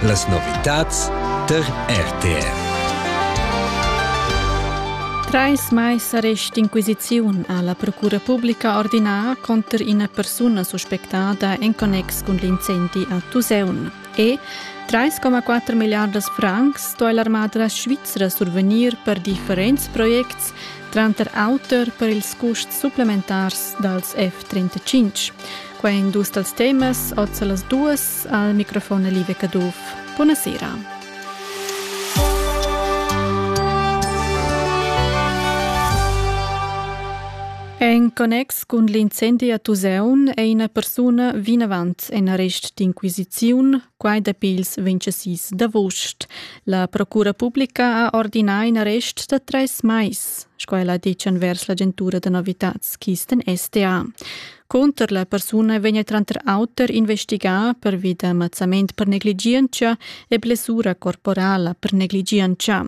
Las novitads tar RTR. Trais mais arrest inquisiziun ha la Procura publica ordinà conter ina persuna suspectada en connex cun l'incendi a Tuseun. E 3,4 milliardas francs sto l'armada svizra survegnir per differents projects, tranter auter per ils custs supplementars dals F-35. Quai è in dus dals temas oz a las duas al microfon Live Caduff. Buona sera! En connex cun l'incendi a Tuseun è ina persuna vinavant en arrest d'inquisiziun, quai dapi ils 26 d'avost. La Procura Publica ha ordinà in arrest da tres mais, sco ella ha ditg envers l'agentura da novitads Kisten STA. Cunter la persuna vegna tranter auter investigà pervi da mazzament per negligientscha e blessura corporala per negligientscha.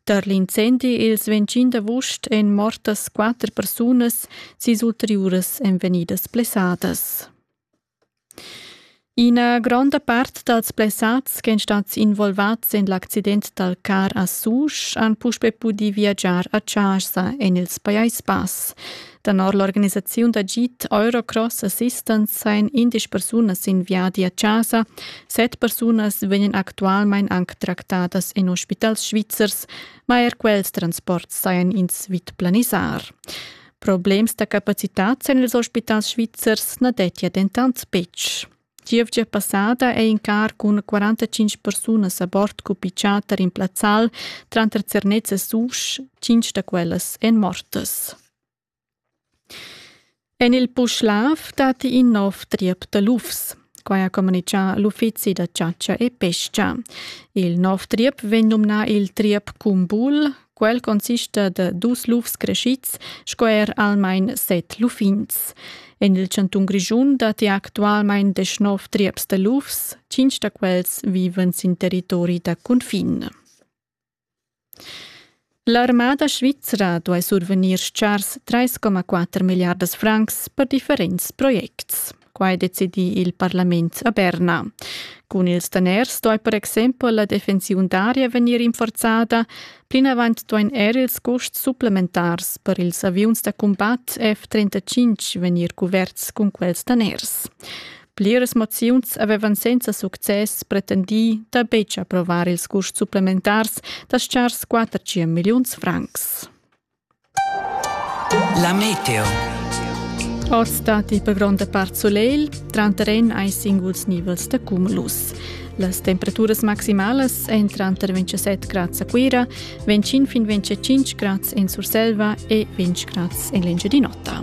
Tar l'incendi ils 25 d'agost èn mortas quatter persunas, sis ulteriuras èn vegnidas blessadas. Ina gronda part dals blessads ch'èn stads involvads en l'accident dal car a Susch han puspè pudì viagiar a chasa en ils Pajais Bass. Tenor l'organisaziun d'agid Eurocross Assistance sajan indesch persunas in viadi a chasa. Set persunas vegnan actualmain anc tractadas en ospitals svizzers, ma er quels transports sajan ins vid planisar. Problems da capacitads en ils ospitals svizzers na dettia dentant betg. Gievgia passada è in car cun 45 persunas a bord cupichà tar in plazzal tranter Zernez e Susch, cinc da quellas èn mortas. En il Puschlav datti in nov triep da lufs. Quai ha communitgà l'uffizi da chatscha e pesca. Il nov triep vegn numnà il triep Cumbul. Quel consista da dus lufs crescids sco er almain set luffins. En il chantun Grischun datti actualmain deschnov trieps da lufs, tschintg da quels vivan sin territori da cunfin. L'armada svizra duai survegnir chars 3,4 milliardas francs per differents projects. Quai decidi il parlament a Berna. Cun ils daners stoi per exempel la defensiun d'aria vegnir rinforzada. Plinavant duain er ils custs supplementars per ils aviuns da cumbat F-35 vegnir cuverts cun quels daners. Pliras moziuns avevan senza success pretendì da betg approvar ils custs supplementars da schars 400 milliuns francs. La meteo. Oz datti per gronda part solegl, tranterren ai singuls nivels da cumulus. Las temperaturas maximalas èn tranter 27 grads a Cuira, 25 fin 25 grads en Surselva e 20 grads en l'Engiadin'Ota.